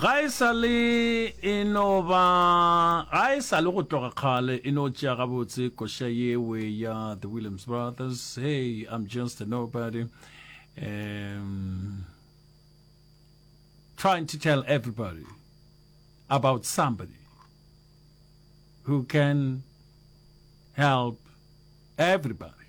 ga e sa le e no ba ga e sa le go tloga kgale e no tšea gabotse koša yewe ya the williams brothers hey i'm just a nobody um, trying to tell everybody about somebody who can help everybody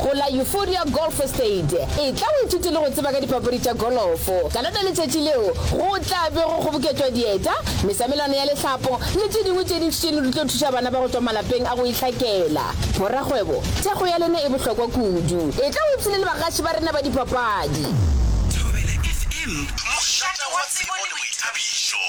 Go la Euphoria Golf Estate, etla o ithute le go tseba ka dipapadi tša golofo. Ka lona letšatši leo, go tla be go kgoboketšwa dieta, mesamelwana ya lehlapo le tše dingwe tše dintši tšeno di tlo thuša bana ba go tšwa malapeng a go itlhakela. Borakgwebo, thekgo ya lena e bohlokwa kudu. Etla o ipshine le bagaši ba rena ba dipapadi. Thobela FM, mošate wa tsebo le boithabišo.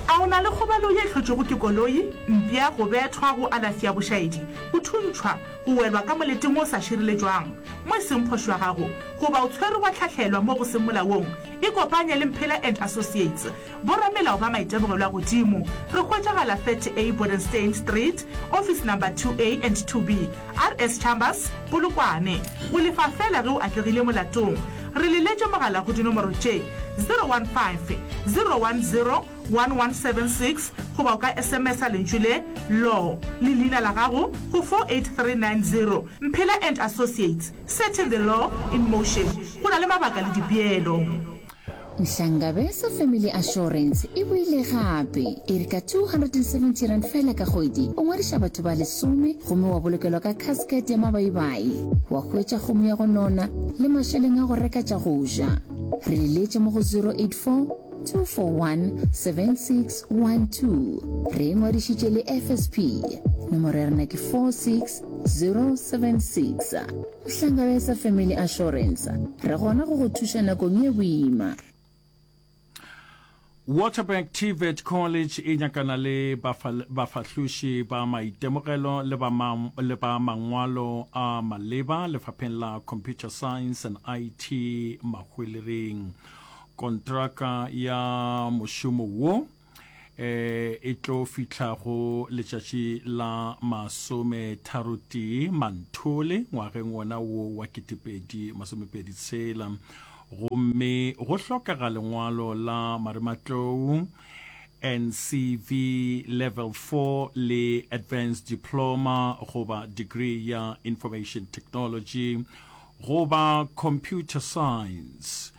A o na le kgobalo ye hlotšwego ke koloi, mpša, go bethwa, go alafi ya bošaedi, go thuntšhwa, go welwa ka moleting o sa šireletšwang mo e seng phošo ya gago, goba o tshwerwe wa hlahlelwa mo go seng molaong? Ikopanye le Mphela and Associates, boramelao ba maitemogelwa godimo. Re hwetšagala 30A Bodenstein Street, office number 2A and 2B. RS Chambers, Polokwane, o lefa feela ge o atlegile molatong. Re le letše mogala go dinomoro tše, 015 010 1176 goba o ka SMS-a lentšu le, Law, le leina la gago go 48390. Mphela and Associates, Setting the Law in Motion, go na le mabaka le dipeelo. Nhlangabeza Family Assurance e boile gape e re ka R270 fela ka kgwedi o ngwadiša batho ba lesome gomme wa bolokelwa ka casket ya mabaibai, wa hwetša kgomo ya go nona le mašeleng a go reka tša go ja. Re le leetše mo go 0842417612. Re e ngwadišitše le FSP. Nomoro ya rena ke 46076. Hlangana sa Family Assurance, re gona go go thuša nakong ye boima. Waterberg TVET College e nyakana le bafahloši ba maitemogelo le ba, ma, le ba mangwalo a maleba lefapheng la Computer Science and IT Mahwelering. Kontraka ya mošomo wo eh, e tlo fihla go letšatši la masome tharo tee manthole ngwageng wona wo wa ketepedi masomepedi tshela gomme go hlokega lengwalo la marematlou ncv level 4 le advanced diploma goba degree ya information technology goba computer science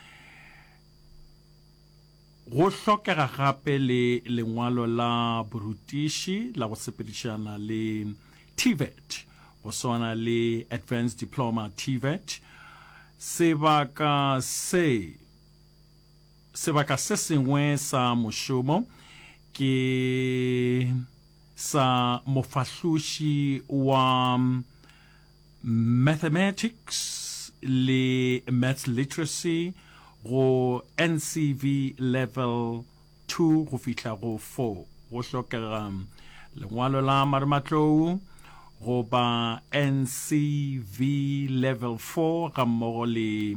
Go hlokega gape le lengwalo la borutiši la go sepedišana le TVET, go swana le Advanced Diploma, TVET. Sebaka se Sebaka se sengwe sa mošomo ke sa mofahloši wa Mathematics le Maths Literacy go NCV Level 2 go fihla go 4 go hlokega lengwalo la marematlou goba NCV Level 4 gammogo le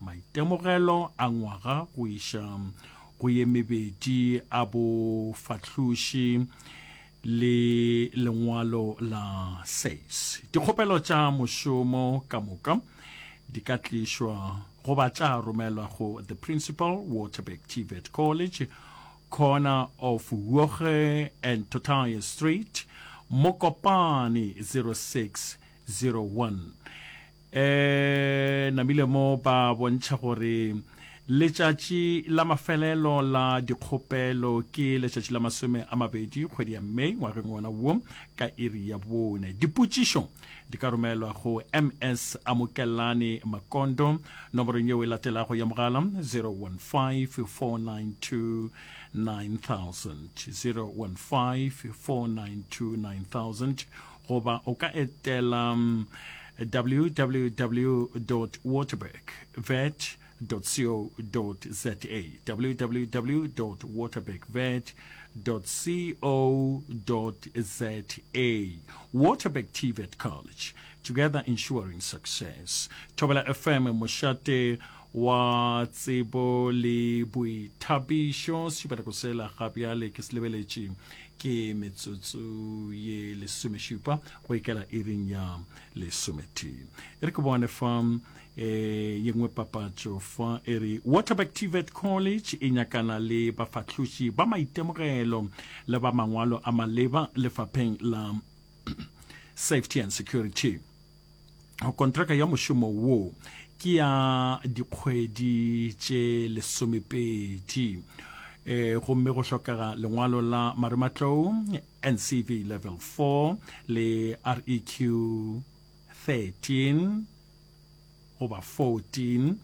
Maitemogelo a ngwaga go iša go ye mebedi a bofahloši le lengwalo la SACE. Dikgopelo tša mošomo ka moka di ka tlišwa goba tša romelwa go The Principal, Waterberg TVET College, corner of Huoge and Totaye Street, Mokopane 06 01 e namile mo ba bontšha gore letšatši la mafelelo la dikgopelo ke letšatši la masome a mabedi kgwedi ya may ngwageng wona wo ka iri ya bone dipotšišo di ka romelwa go ms amokelane makondo nomorong yeo e latelago ya mogala 015 492 9000 015 492 9000 Goba o ka etela www dot waterberg vet dot co dot za, www dot waterberg vet dot co dot za, Waterberg TVET College, together ensuring success. Thobela FM, mošate wa tsebo le boithapišo sešupeleko sela ga bjale ke se lebeletše ke metsotso ye lesomešupa go ikela iring ya lesometee e re ke bone fa um ye nngwe papatšo fa e re waterback tvet college e nyakana le bafahloši ba maitemogelo le ba mangwalo a maleba lefapheng la safety and security kontraka ya mošomo wo ke ya dikgwedi tše lesomepedi e gomme go hlokega lengwalo la marematlou ncv level 4 le req 13 goba 14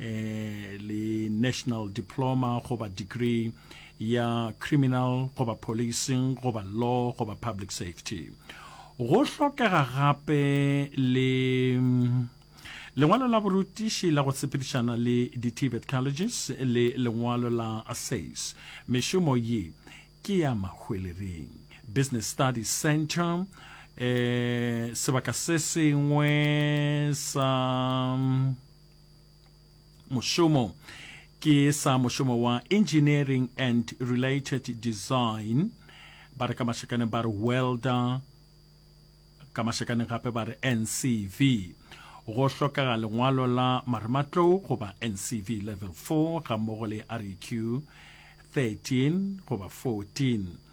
eh, le national diploma goba degree ya criminal goba policing goba law goba public safety go hlokega gape le lengwalo la borutiši la go tshepedišana le di-tibet colleges le lengwalo la says mešomo ye ke ya mahwelereng business study center eh sebaka se sengwe sa mošomo ke sa mošomo wa engineering and related design ba re ka mašakaneng ba re welder ka mašakaneng gape ba re ncv go hlokega lengwalo la marematlou goba ncv level 4 ga mmogo le req 13 goba 14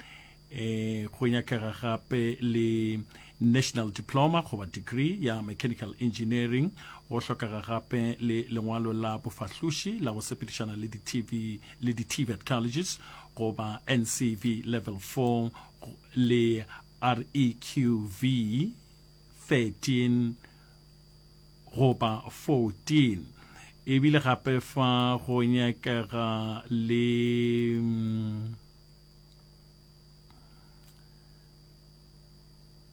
Eh, go nyakega gape le national diploma goba degree ya mechanical engineering go hlokega gape le lengwalo la bofahloši la go sepedišana le di-tv le di-tvet colleges goba ncv level 4 le reqv 13 goba 14 ebile gape fa go nyakega le mm,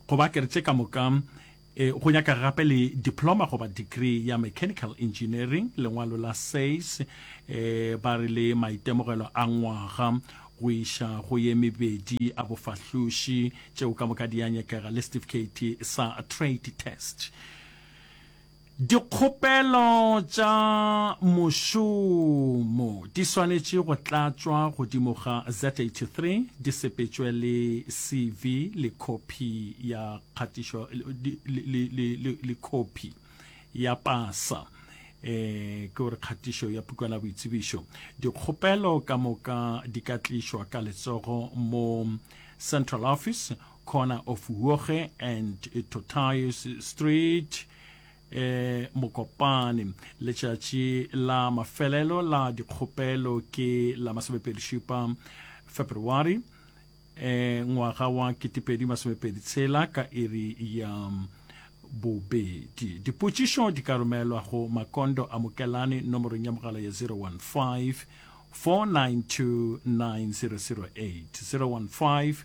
goba ke re tše ka moka e, go nyaka gape le diploma goba degree ya mechanical engineering lengwalo la says e, ba re le maitemogelo a ngwaga go iša go ye mebedi a bofahloši tšeo ka moka di ya nyakega le certificate sa trade test Dikgopelo tša mošomo di swanetše go tlatšwa godimo ga Z-83, di sepetšwe le CV le khophi ya kgatišo le khophi ya pasa, e ke gore kgatišo ya pukwana ya boitsebišo. Dikgopelo ka moka di ka tlišwa ka letsogo mo Central Office Corner of Huoge and Totays Street e Mokopane. Letšatši la mafelelo la dikgopelo ke la masomepedi-šupa Feberwari e ngwaga wa ketepedi masomepedi-tshela ka iri ya bobedi. Dipotšišo di ka romelwa go Makondo a Mokelane nomorong ya mogala ya 015 492 9008, 015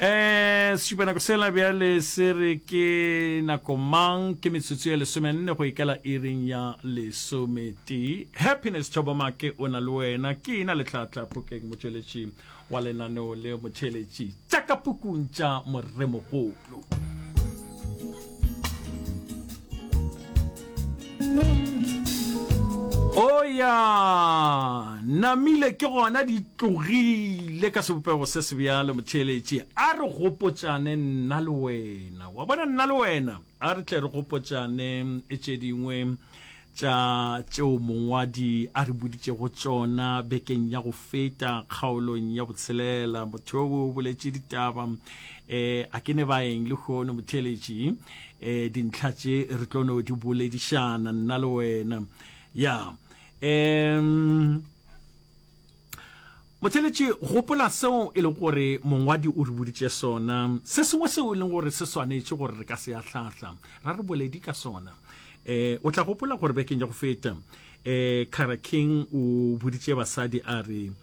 Ee, Sešupa nako sela bjale se re ke nako mang? Ke metsotso ye lesomenne go ikela iring ya lesometee. Happiness Thobo Make o na le wena, ke ena Letlhatla Phokeng motšweletši wa lenaneo le, motheeletši tša ka pukung tša Moremogolo. oya namile ke gona di tlogile ka sebopego se se bjale motheeletše a re gopotšane nna le wena wa bona nna le wena a re tle re gopotšane e tše dingwe tša tšeo mongwadi a re boditšego tšona bekeng ya go feta kgaolong ya botshelela motho yo o boletše ditaba um a ke ne baeng le kgono motheletši um eh, dintlha tše re tlo no di boledišana nna le wena ya um Motheeletši, gopola seo e lego gore mongwadi o re boditše sona, se sengwe seo e leng gore se swanetše gore re ka se ahlahla ra re boledi ka sona. Um o tla gopola gore bekeng ya go feta, um Cara King o boditše basadi a re, um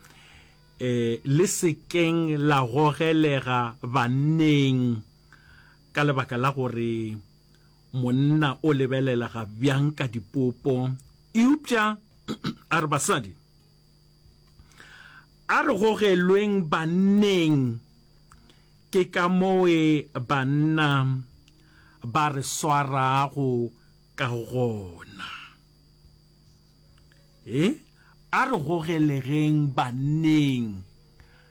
Le se keng la gogelega banneng ka lebaka la gore monna o lebelega bjang ka dipopo, eupša a re basadi, A re gogelweng banneng, ke ka moe banna ba re swarago ka gona. He, a re gogelegeng banneng.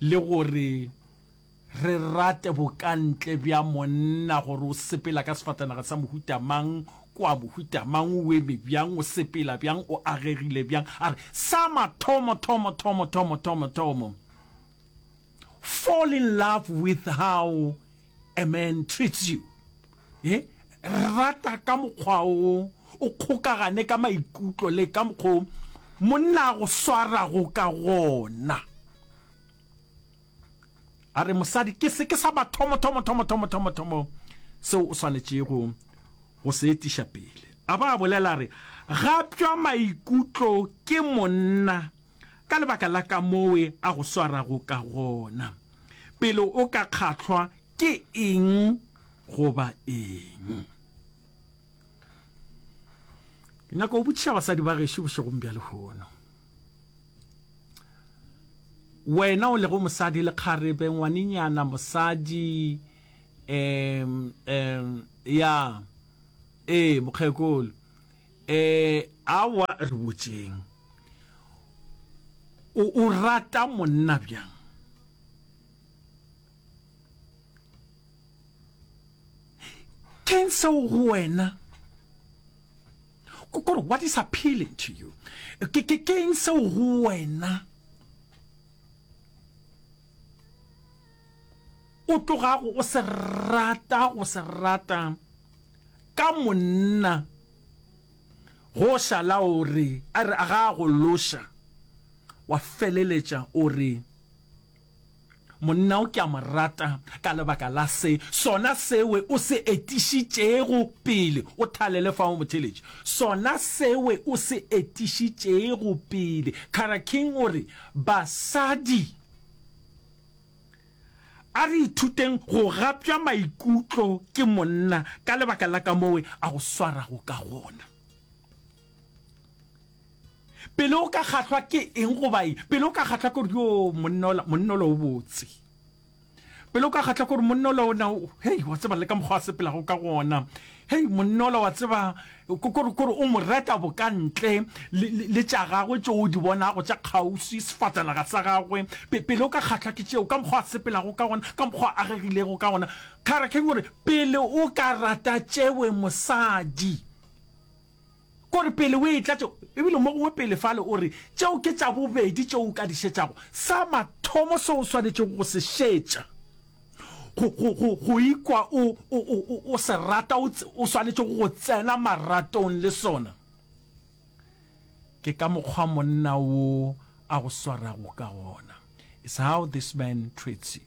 le gore re rate bokantle bja monna, gore o sepela ka sefatanaga sa mohuta mang, kwa mohuta mang, o eme bjang, o sepela bjang, o agegile bjang. A re, Sa mathomo, thomo, thomo, thomo, thomo, thomo, fall in love with how A man treats you eh rata ka mokgwa o o kgokagane ka maikutlo le ka mokgwa o monna a go swarago ka gona a re mosadi ke se ke sa mathomo thomo thomo thomo thomo thomo seo o swanetšego go se etiša pele a ba a bolela re gapša maikutlo ke monna Ka lebaka la kamoo a go swarago ka gona, pele o ka kgahlwa ke eng goba eng. Ke nyaka go botšiša basadi ba gešo bošegong bja lehono. Wena o lego mosadi le kgarebe, ngwanenyana, mosadi, um, um, ya, ee, mokgekolo, Ee, aowa, re botšeng. O, o rata monna bjang? Keng seo go wena? Kore, what is appealing to you? Ke, ke, keng seo go wena? O tlogago o se rata, go se rata. Ka monna go šala o re, a re a ga a go loša, wa feleletša o re, Monna o ke a mo rata ka lebaka la se, sona sewe o se etišitšego pele, o thalele fa o mo theletše, sona sewe o se etišitšego pele. Kara King o re, Basadi. A re ithuteng go gapša maikutlo ke monna ka lebaka la kamoo a go swarago ka gona. Pele o ka kgahlwa ke eng goba eng, pele o ka kgahlwa ke gore yoo monna ola, monna ola o botse, pele o ka kgahlwa ke gore monna ola o na, hei, wa tseba le ka mokgwa a sepelago ka gona, Hei monna ola wa tseba kore kore o mo reta boka ntle le tša gagwe tšeo o di bonago tša kgauswi sefatanaga sa gagwe pele o ka kgatlhwa ke tšeo ka mokgwa a sepelago ka gona ka mokgwa a agegilego ka gona kgara keng gore pele o ka rata tšewe mosadi Ke gore pele o e tlatše, ebile mo gongwe pele fale o re, Tšeo ke tša bobedi tšeo o ka di šetšago. Sa mathomo seo o swanetšego go se šetša, go, go, go, go ikwa o, o, o, o, o se rata, o, o swanetšego go tsena maratong le sona, ke ka mokgwa monna wo a go swarago ka gona. It's how this man treats you.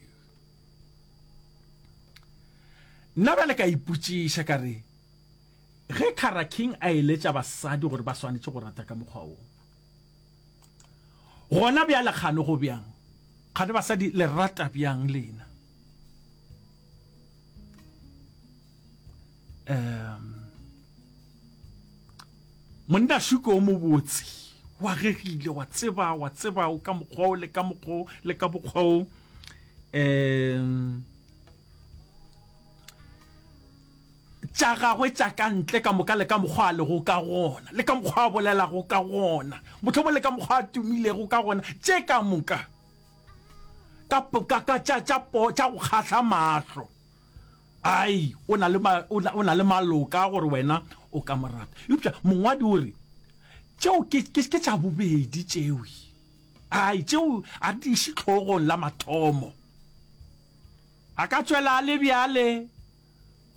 Nna bjale ka ipotšiša ka re, Ge Kara King a eletša basadi gore ba swanetše go rata ka mokgwa wo, gona bjale kgane go bjang? Kgane basadi le rata bjang lena? Um, monna Shuko o mobotse, wa gegile, wa tseba, wa tseba o ka mokgwa o le ka mokgwa o le ka mokgwa o. Um, tša gagwe tša ka ntle ka moka le ka mokgwa a lego ka gona le ka mokgwa a bolelago ka gona, mohlomongwe le ka mokgwa a tumilego ka gona, tše ka moka ka tša go kgahla mahlo. Ai, o na le, o na le maloka a gore wena o ka mo rata. Eupša mongwadi o re, Tšeo ke, ke, ke tša bobedi tšeo. Ai, tšeo a di iše hlogong la mathomo. A ka tšwela a le bjale.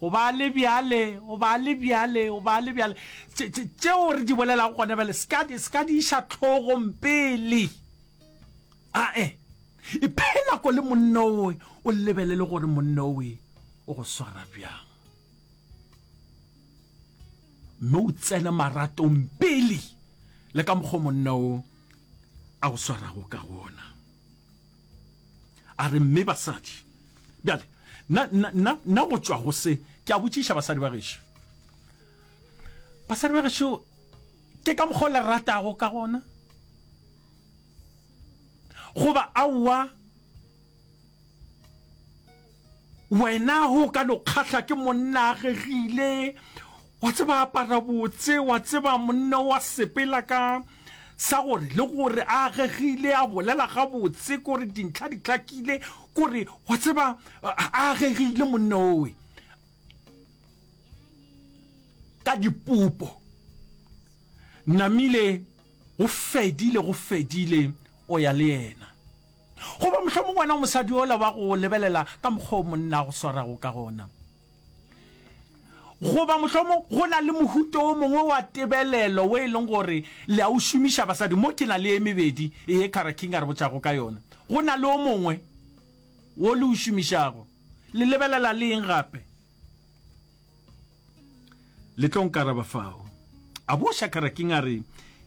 Go ba le bjale, go ba le bjale, go ba le bjale. Tše, tše, tšeo re di bolelago gone bjale, se ka, se ka di iša hlogong pele. Ae. Iphe nako le monna owe, o lebelele gore monna owe o go swara bjang. Mme o tsene maratong pele le ka mokgwa monna o a go swarago ka gona. A re, Mme basadi, bjale, nna, nna, nna, nna go tšwa go se, ke a botšiša basadi ba gešo, basadi ba gešo, ke ka mokgwa o le ratago ka gona, goba aowa? Wena ge o ka no kgahla ke monna a gegile, wa tseba apara botse, wa tseba monna wa sepela ka sa gore le gore a gegile a bolela gabotse kore dintlha di tlakile kore wa tseba a gegile monna owe ka dipupo namile go fedile go fedile o ya le yena Goba mohlomongwe wena o mosadi ola wa go lebelela ka mokgwa o monna a go swarago ka gona. Goba mohlomongwe go na le mohuta o mongwe wa tebelelo o e leng gore le a o šomiša basadi. Mo ke na le e mebedi ye Kara King a re botšago ka yona. Go na le o mongwe wo le o šomišago. Le lebelela le eng gape? Le tlo nkaraba fao. A bo Shakaraking a re,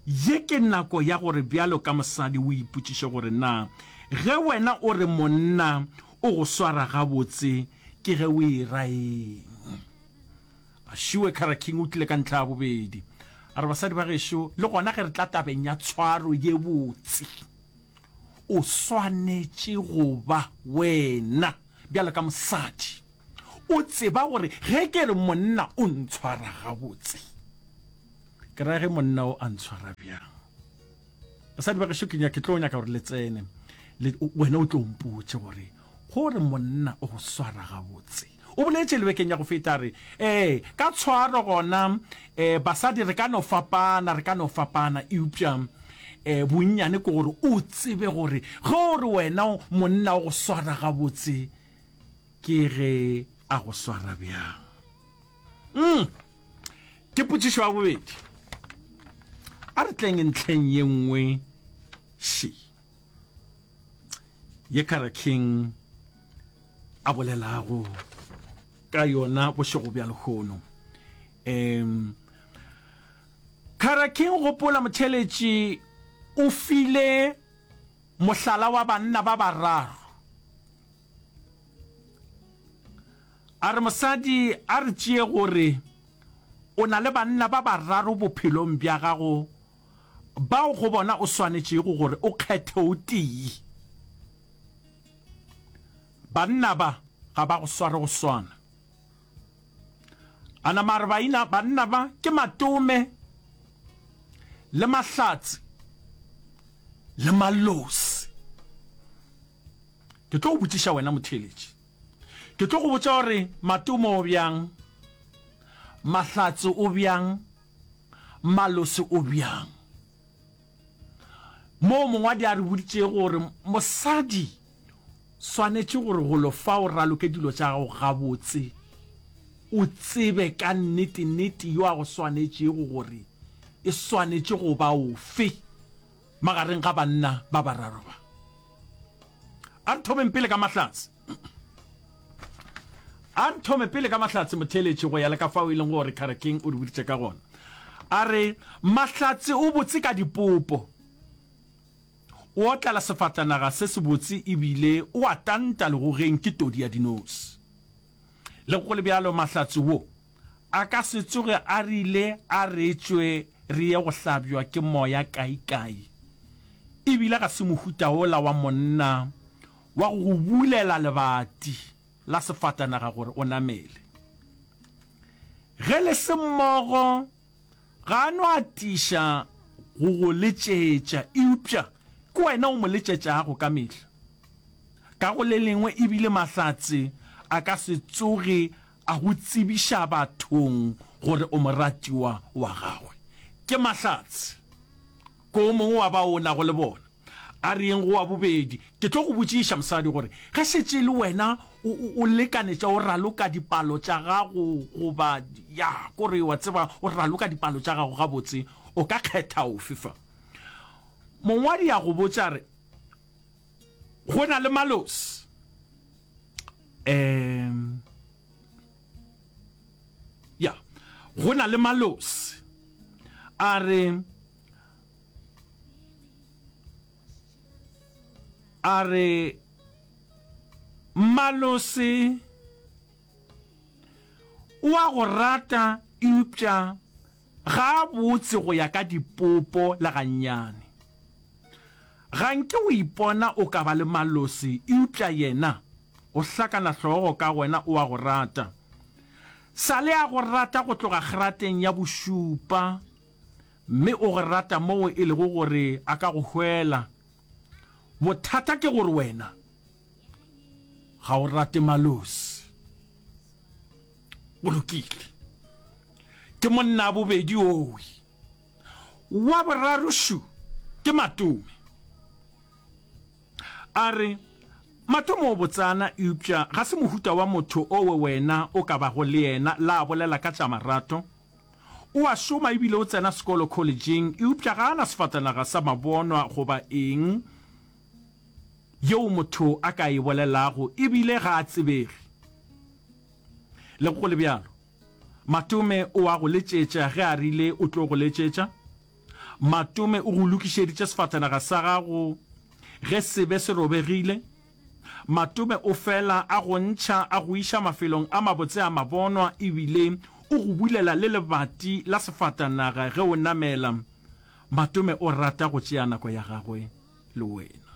Ye ke nako ya gore bjalo ka mosadi o ipotšiše gore na ge wena o re monna o go swara gabotse ke ge o e ra eng. A šiwe Karaking o tlile ka ntlha ya bobedi. A re, Basadi ba gešo, le gona ge re tla tabeng ya tshwaro ye botse, o swanetše go ba wena bjalo ka mosadi. O tseba gore ge ke re monna o ntshwara gabotse, ke ra ge monna o a ntshwara bjang. Basadi ba gešo ke tlo nyaka gore le tsene, wena o tlo mpotše gore gore monna o go swara gabotse. O boletše lebekeng ya go feta re ee ka tshwaro gona um basadi re ka no fapana re ka no fapana eupša um bonnyane ke gore o tsebe gore ge o re wena monna o go swara gabotse ke ge a go swara bjang mm. ke potšišo ya bobedi a re tleng ntlheng ye nngwe she ye kara king a bolelago ka yona bošego bja lehono um kara king gopola motheletši o file Mohlala wa banna ba bararo. A re mosadi a re tšee gore o na le banna ba bararo bophelong bja gago bao go bona o swanetšego gore o kgethe o tee. Banna ba ga ba go sware go swana. A nama a re baina, banna ba ke matome le mahlatse le malosi. Ke tlo go botšiša wena motheeletši. Ke tlo go botša gore matome o bjang, mahlatse o bjang, malosi o bjang. Moo mongwadi a re boditšego gore mosadi swanetše gore golo fa o raloke dilo tša gago gabotse, o tsebe ka nnete-nnete yo a go swanetšego gore e swanetše go ba ofe magareng ga banna ba bararo ba. A re thomeng pele ka Mahlatse. a nthome pele ka mahlatse motheeletši go ya le ka fao e leng gore kharekeng o re boditše ka gona a re mahlatse o botse ka dipopo o otlala sefatanaga se se botse ebile o a tanta legogeng ke todi ya dinosi le go le bjalo mahlatse wo a ka se tsoge a rile a re tšwe re ye go hlabjwa ke moya kaikai ebile ga se mohutaola wa monna Wa go go bulela lebati la sefatanaga gore o namele. Ge le se mmogo, ga a no atiša go go letšetša, eupša ke wena o mo letšetšago ka mehla. Ka go le lengwe e bile Mahlatse a ka se tsoge a go tsebiša bathong gore o moratiwa wa gagwe. Ke Mahlatse. Ko o mongwe wa bao o nago le bona a re, Yeng go wa bobedi? Ke tlo go botšiša, mosadi, gore ge šetše e le wena o, o, o lekanetša, o raloka dipalo tša gago, goba, ya, kore, wa tseba, o raloka dipalo tša gago gabotse, o ka kgetha ofe fa. Mongwadi a go botša a re, Go na le Malos. Um. Ya, go na le Malosi a re, a re Malosi o a go rata eupša Gabotse go ya ka dipopo le gannyane, ga nke o ipona o ka ba le malosi eupša Yena o hlakana hlogo ka wena, o a go rata. Sa le a go rata go tloga kgerateng ya bošupa, mme o go rata moo e lego gore a ka go hwela. Bothata ke gore wena ga o rate malosi o lokile ke monna a bobedi owe wa boraro shu ke matome a re matome o botsana eupša ga se mohuta wa motho owe wena o ka bago le yena la bolela ka tša marato o a šoma ebile o tsena sekolo collegeng eupša ga a na sefatanaga sa mabonwa goba eng Yeo motho a ka e bolelago e bile ga a tsebege. Le go le bjalo, Matome o a go letšetša ge a rile o tlo go letšetša. Matome o go lokišeditše sefatanaga sa gago ge se be se robegile. Matome o fela a go ntšha a go iša mafelong a mabotse a mabonwa e bile o go bulela le lebati la sefatanaga ge o namela. Matome o rata go tšea nako ya gagwe. le wena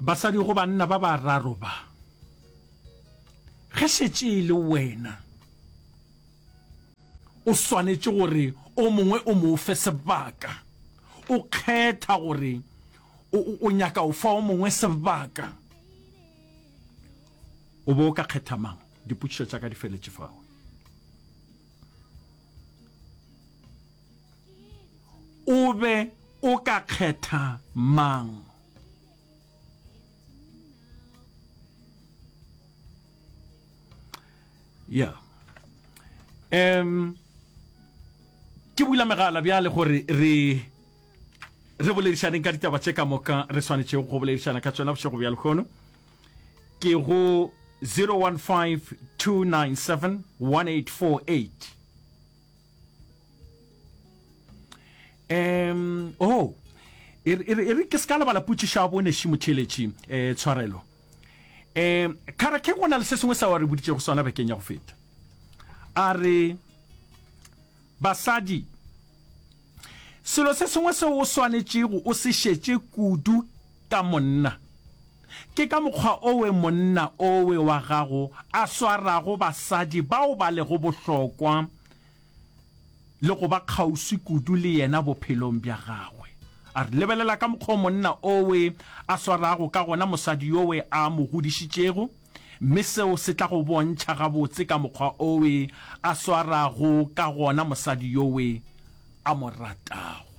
basadi go banna ba bararo ba ge šetše e le wena o swanetše gore o mongwe o mo fe sebaka o kgetha gore o nyaka o fa o mongwe sebaka o bo o ka kgetha mang dipotšišo tša ka di feletše fao O be o ka kgetha mang? ya um ke bula megala bjale gore re re boledišaneng ka ditaba tše ka moka re swanetšego go boledišana ka tsona bošego bja lekgono ke go 015 297 1848 um oh e re ke se ka lebala putsišo ya boneši motheletši um eh, tshwarelo um kgara ke go na le se sengwe sa wa re boditšego sona bekeng ya go feta a re Basadi, Selo se sengwe seo o swanetšego o se šetše kudu ka monna ke ka mokgwa owe monna owe wa gago a swarago basadi bao ba lego bohlokwa le go ba kgauswi kudu le yena bophelong bja gagwe. A re, Lebelela ka mokgwa o monna owe a swarago ka gona mosadi yowe a mo godišitšego. Mme seo se tla go bontšha gabotse ka mokgwa owe a swarago ka gona mosadi yowe a mo ratago.